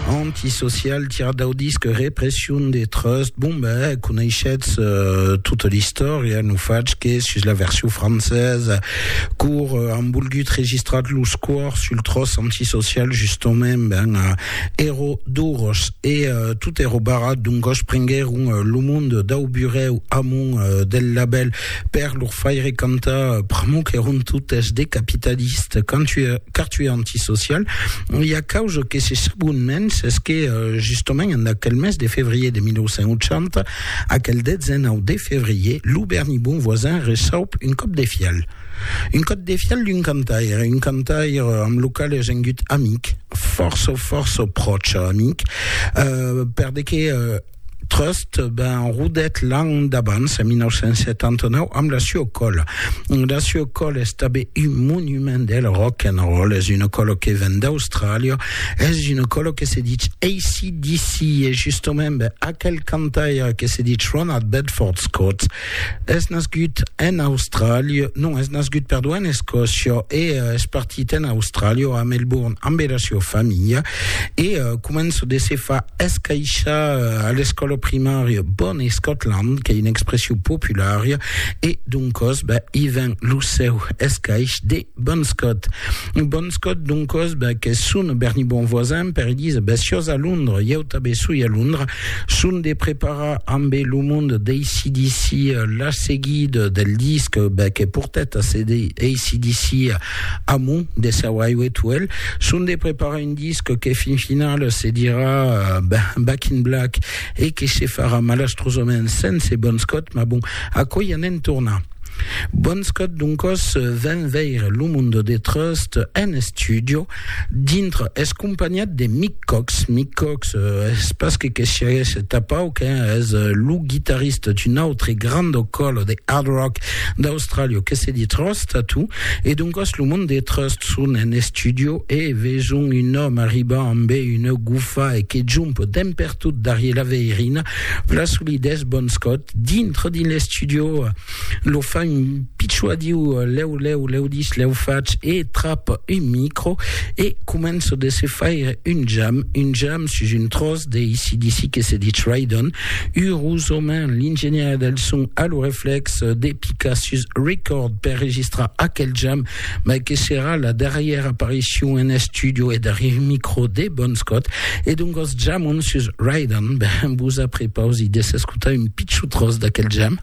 Antisocial, tirat dau disc Repression de Trust. Bon, ben, coneishetz euh, tota l'istòria, no fach que sus la version francesa, cor euh, an volgut registrat los cors sul tròç antisocial, justament, ben, euh, èro doros, e euh, tot èro barrat, donc gosh, prenguèron euh, lo monde dau burèu amont euh, del labèl, Per lor faire cantar pr'amor qu'èron totes de capitalistes, car tu es antisocial, i a causa que se sabon mens es que, justament, en aquel mes de fevrier de 1980, aquel 19 de fevrier, lo Berni Bonvoisin resaup un còp de fial. Un còp de fial d'un cantaire, un cantaire amb lo qual es engut amic, fòrça, fòrça pròche amic, per de que, Trust ben rodet l'an d'abans, en 1979, amb la Sue Call. La Sue Call es tabé un monument del rock and roll, es una colo que ven d'Austràlia, es una colo que se ditz ACDC, e justament ben, aquel cantaire que se ditz Ronald Bedford Scott, Es nascut en Austràlia, non, es nascut, perdó, en Escòcia e uh, es partit en Austràlia, a Melbourne, amb la sua familha e uh, comença de se fa escaixar uh, a l'escòla primària Bon Scotland, que é una expression populara, e doncòs, ben, i ven lo seu escaix de Bon Scott. Bon Scott, doncos, bèc, es son berni bon voisin, per Elisa, bèc, siós a Londres, ieu tabé soi a Londres, son de preparar ambé lo mond d'ACDC la seguida del disc, bèc, e portèt a CD ACDC amont de seu Highway to Hell, son de preparar un disc que fin final se dirà Back in Black e que se farà malastrosament sense Bon Scott, mas bon, aquò i anem tornar. Bonscot doncos ven veire lo Mundo de Trust en estudio dintre es companhat de Mick Cox. Mick Cox es pas que que siaguesse tapau que es lo guitarrista d'un autre grando colo de hard rock d'Australia que se dit Trust Tattoo e doncos lo Mundo de Trust son en estudio e veson un òme arribar ambe una gufa e que jump demper Tot darrier la veirina, la solidess bon scot, dintre dins l'estudio, lo fa un pichou a Diu, lèu, lèu, lèu dis, lèu fach, e trap un micro, e començo de se faire un jam, un jam sus un tròç de ACDC que se ditz Ride On, urosament l'ingenièr del son a lo reflex de picar sus Record per registrar aquel jam, mai que serà la darrièra aparicion en estudio e darrièr micro de Bon Scott, e doncas jamon sus Ride On, ben vos aprepausi de s'escotar un pichon tròç d'aquel jam.